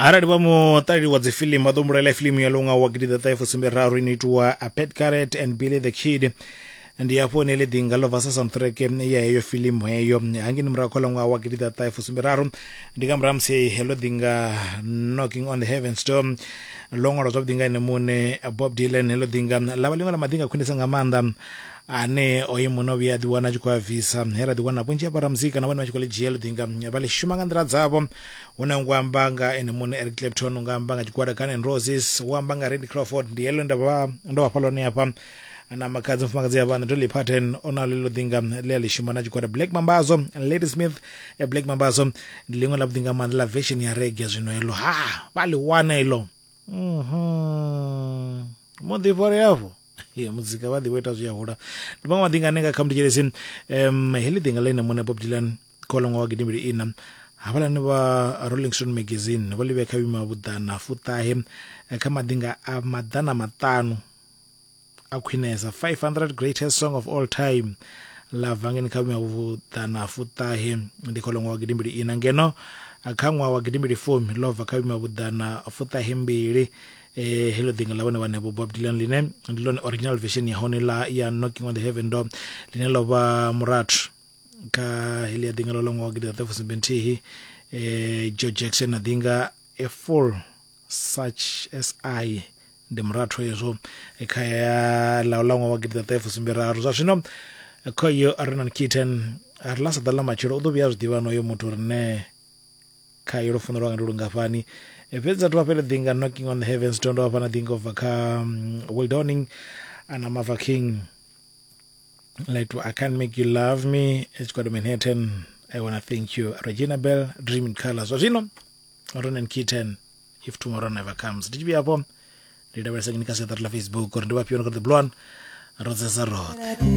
arali vha muṱaleli wa dzifilimu vha ḓo mbulaela filimu ya longa wa gidi ḓaṱahe fusumbe raru ino itiwa a pet caret and billy the kid ndi hafho ne ḽi ḓinga ḽo vasa soundtrack ya heyo filimu heyo hangini murahu kha ḽaṅwaha wa gidi ḓaṱahe fusumbe raru ndi nga murahu musi ḽo ḓinga knocking on the heaven storm ḽo ṅwalwa zwavhuḓi nga ene muṋe bob dylan ḽo ḓinga ḽa vha ḽiṅwe ḽa maḓinga khwinisa nga maanḓa ane oyo muno vhuya a ḓiwana a tshi khou a bvisa he ra ḓiwana vhunzhi ha vharamuzika na vhone vha tshi khou ḽi dzhia ḽiḓi nga vha ḽi shuma nga nḓila dzavho hu na ngo amba nga ene muṋe eric clapton u nga amba nga tshigwada gun and roses u amba nga randy crawford ndi heḽo nda vha ndo vhafha ḽone hafha na makhadzi mufumakadzi ya vhana dolly parton o na ḽeḽo ḓinga ḽi a ḽi shuma na tshigwada black mambazo lady smith eh, black mambazo ndi ḽiṅwe ḽa vhuḓinga maanḓa ḽa version ya rege zwino heḽo ha vha ḽi wana iḽo mhm. muḓifhori hafho ya muzika vha ḓi vho ita zwi a hula ndi maṅwe maḓi nga ane nga kha mutetshelesi um heḽi ḓinga ḽa ine muṋe bob dylan kha ḽa ṅwaha wa gidimbili ina havhalani vha rolling stone magazine vho ḽi vhea kha vhima vhuḓana fuṱahe eh, kha maḓinga a maḓana maṱanu a khwinesa 500 greatest song of all time ḽa bva ngeni kha vhima vhuḓana fuṱahe ndi kha ḽa ṅwaha wa gidimbili ina ngeno eh, kha ṅwaha wa gidimbili fumi ḽo bva kha vhima vhuḓana fuṱahe mbili eh, heḽo ḓinga ḽa vhone vhaṋevho bob dylan line ndi lone original version ya hone ḽa ya knocking on the heaven door line ḽo vha murathu kha heḽi ya ḓinga ḽo ḽa ṅwaha wa gidi ḓaṱafusumbe nthihi eh, joe jackson na ḓinga a full such as i ndi murathu hezwo eh, kha ya ḽa ḽa ṅwaha wa gidi ḓaṱafusumbe raru zwa zwino eh, khoyo arenan kitten a ri ḽa sa ḓa ḽa matshelo u ḓo vhuya a zwi ḓivha noyo muthu uri ne khayo lufuno lwanga ndi lungafhani Eh, fhedzi athu vhafhele ḓinga knocking on the heavens to ndo vhafhana ḓinga ubva kha mm, wildoning ana mava king like i can't make you love me tshikwado manhattan i wanna thank you regina bell dream in color zwa zwino ronan kitten if tomorrow never comes ndi tshivhi afho ndi lavhelesa ngini kha siaṱari ḽa facebook uri ndi vhafhiyo no kha the blon rodzesa roṱhe